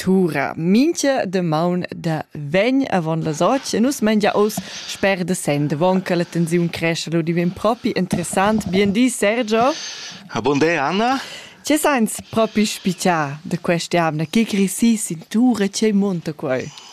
Tura mincha damaun da vegn avon las otg e nus mengia oz sper da Sent. Avon che la tensiun crescha lu divin propi interessant. Bien di Sergio. Ha bun day Anna. Che seins propi spichà da questa jamna? Che cresì sin tura? Che monta quai?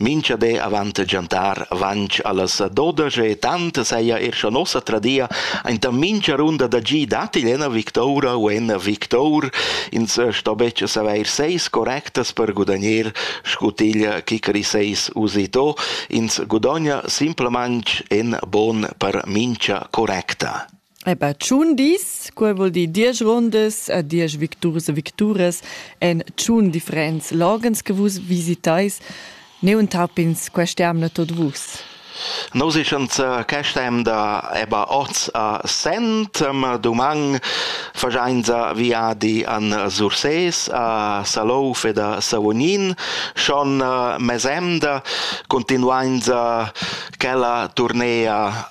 Mincha be avant giantar vanch allas dodas e tant saja er scha nossa tradia aint a mincha runda da gi datti ena victoura u en victour, ins sto betg savair seis correctas per gudagner scutiglia chicri seis usito, ins gudogna simplemanch en bon per mincha correcta. Eba tschun dis, quei vul dir diesch rondas e diesch victurs e victuras en tschun differents loghens che vus visitais. Neu entapins questa emna tot vus. Nus eschan zur questa emda eba oz a Sent, ma dumang fagiainsa viadi an Sursés, a Salouf ed a Savognin. Schon uh, mesemda continuainsa quella turnea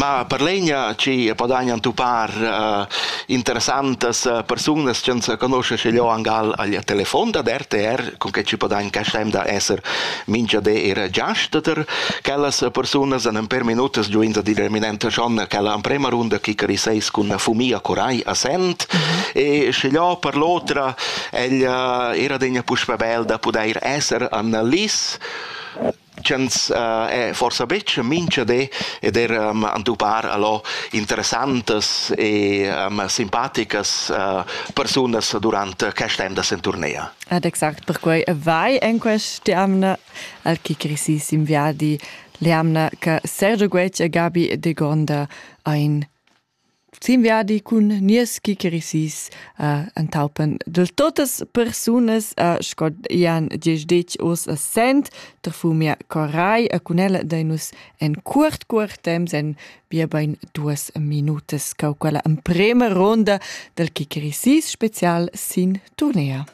Ma per l'egna chi podagna entupar uh, interessantas uh, persunas chi ans conoschen schi lò angal al telefon dad RTR, con che ci podagn castem da esser mincha di ir giast ter quellas persunas an per minutas giuins a dire minente schon quella amprema runda chicari seis cun fumia corai a sent mm -hmm. e schi lò per l'otra el uh, era degna puspe bel da pudeir esser an lis ch'ins eh, forsa betg mincha di ed er um, entupar allo interessantas e um, simpaticas uh, persunas durant quest temps in tournea. Ed exact perquai vai en questa amna al che cresissim viadi, l'amna che Sergio Guec e Gabi de Gonda ein Sin viadi cun nies gigerisis uh, entaupen dil totas persunas uh, sco Jan diesch uss a Sent, der fu mia corai e cun ella dei nus en cuort cuort temps en bia bein duas minutas cau quella emprema ronda del gigerisis special sin turnea.